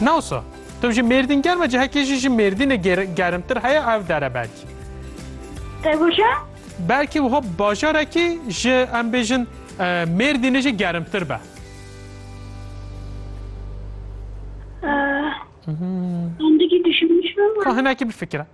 Nawsa, tu ji Mêrdîn germ e cihekê jî ji Mêrdînê germtir heye ev dere belkî. Qewija? Belkî wiha bajarekî ji em bêjin Mêrdînê jî germtir be. Hinekî dişimin ji ber wan. Hinekî bifikire.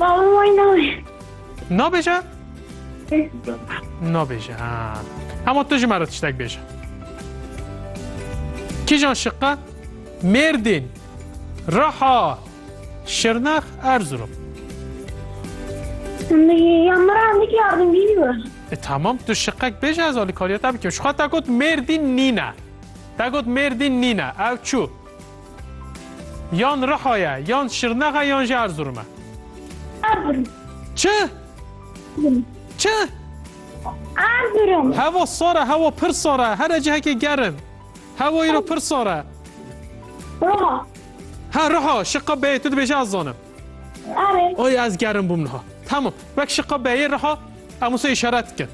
Baba wê nabê. Nabêje? Nabêje ha. Hema tu ji me re tiştek bêje. Kîjan şiqe? Mêrdîn, Riha, Şirnex, Erzurum. Ya mira hemdîk yardımcıyı var. E tamam tu şiqek bêje ez alîkariya te bikim. Şixa te got Mêrdîn nîne. Te got Mêrdîn nîne. Ew çû. Yan Riha ye, yan Şirnex e yan jî Erzurum e? Erzurum. Çi? Çi? Erzurum. Hevo sar e, hevo pir sar e. Here cihekê gerim. Hevo îro pir sar e. Riha. Ha Riha, şiqa bê, tu dibêjî ez zanim. Arê. Oy ez gerim bûm niha. Tamam. Wek şiqa beyê riha em wisa îşaret dikin.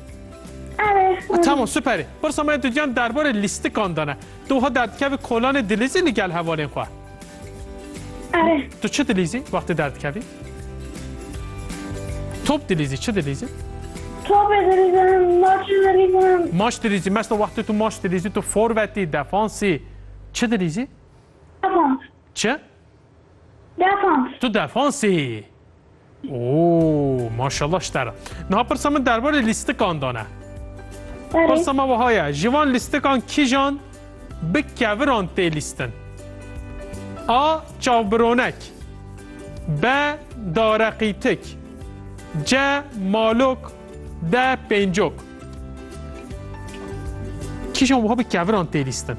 Arê. E, tamam süperê. Pirsa me tu giyan derbarê lîstikan de ne. Tu wiha derdikevî kolanê dilîzî li gel hevalên xwe. Arê. Tu çi dilîzî wextê derdikevî? Top dilîzî, çi dilîzî? Topê dilîzim, maçê dilîzim. Maç dilîzî, mesta wextê tu maç dilîzî, tu forvetî, defansî. Çi dilîzî? Defans. Çi? Defans. Tu defans î? Oo maşallah ji te re. Niha pirsa min derbarê lîstikan da ne. Berê. Pirsa me wiha ye, ji van lîstikan kîjan bi keviran tê lîstin? A. Çavbironek B. Dareqîtik C. Malok D. Pêncok Kîjan wiha bi keviran tê lîstin?